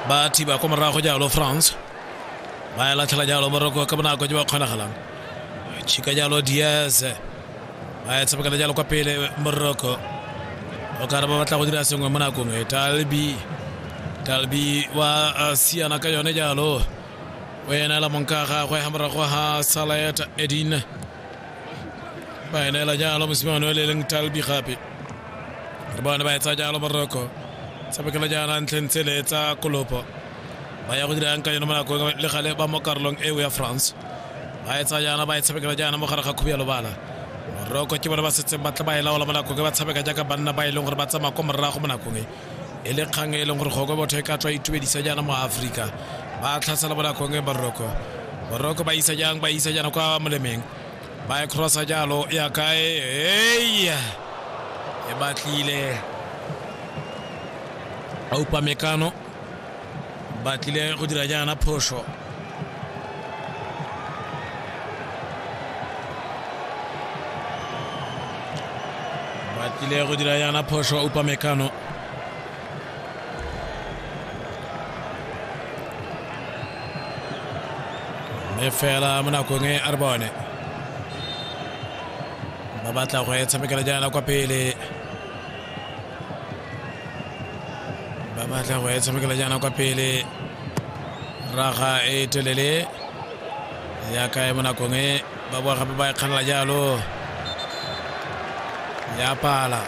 ba thiba ko morago jalo france ba e latlhela jalo moroko ka bonako jo ba kgonagalang chika jalo diaz ba e tshamekela jalo kwa pele moroko o ka re ba batla go dira sengwe mo nakong e talbi talbi wa uh, siana ka yone jalo o enela monka gagwe ga morago ga salet edin Baye ne la jalo musima no le leng talbi gape re bona ba etsa jalo moroko sabeke la jana ntlheng tse le etsa kolopo ba ya go dira ka yone mo nakong le gale ba mo karolong eo ya france ba etsa jana ba e tshabekela jana mo gare ga khubi ya lobala moroko ke bone ba setseng ba tla ba e laola mo nakong e ba tshabeka jaaka banna ba e leng gore ba tsamaya ko morago mo nakong e e le kgang e leng gore goko botho e ka tswa itumedisa jaana mo aforika ba tlhasela bonakong e boroko boroko ba isa jang ba isa jaana kwa molemeng ba e crossa jalo ya kae eya e batlile aupa mekano ba tlile go dira jaana phoso ba tlile go dira jaana phoso upa mekano mme fela mo nakong e a re bone ba batla go e tshamekela jaana kwa pele ba batla go e tshamekela jaana kwa pele raga e telele ya kae mo nakong e ba boa gape ba e kganela jalo ya pala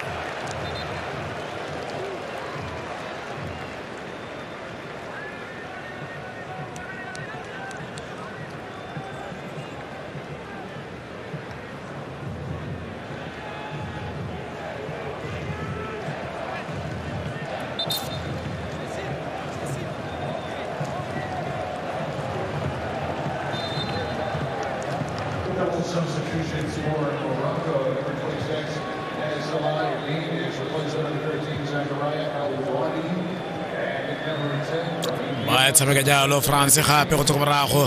Tshameka jalo France gape go tswa ko morago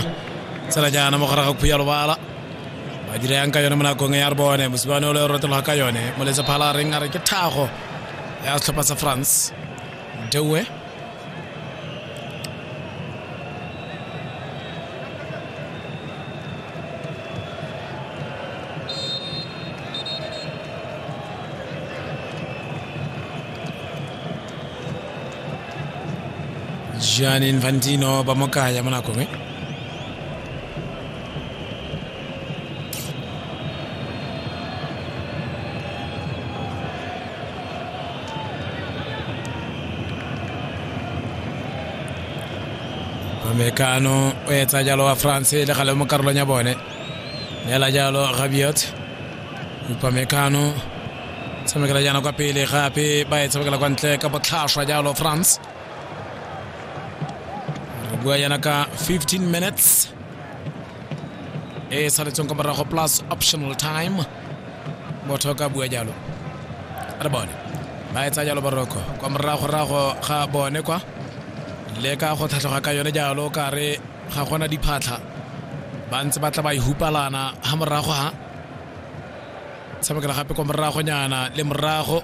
tsela jaana mo gare ga khuya lobala ba dira yang ka yone mo nakong ya re bone mosibane o le rotelwa ka yone moletse phala a reng a re ke thago ya setlhopha sa france dewe gianni infantino ba mo kaya mo nakong e americano o etsa jalo wa france le gale mo karolong ya bone neela jalo gabiot upamecano tshamekela jaana kwa pele gape ba e tshamekela kwa ntle ka botlhaswa jalo france bua yana ka 15 minutes e saletseng kwa morago plus optional time motho ka bua jalo re bone ba etsa jalo boroko kwa moragorago ga bone kwa le ka go tlhatlhoga ka yone jalo ka re ga gona diphatlha ba ntse ba tla ba ihupalana ga morago ga tshamekela gape kwa moragonyana le morago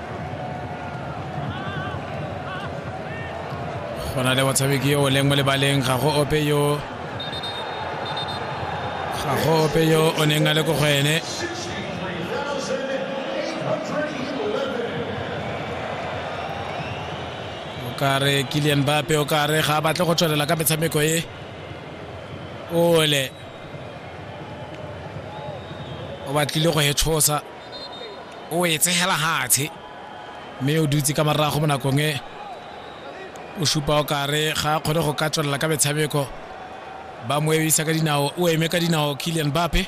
go na le motshameki yo o leng mo lebaleng ga go ope yo ga go ope yo o neng a le ko go ene kare kilian bape o kare ga a batle go tswelela ka metshameko e ole o batlile go e tshosa o e tshegela hatshe mme o dutse ka morago mo nakong e o supa o kare ga a kgone go ka tswelela ka metshameko ba mo emisa ka dinao o eme ka dinao kilian bape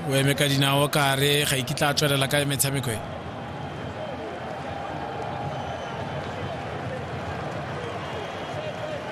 o eme ka dinao kare ga ikitla a tswelela ka metshameko e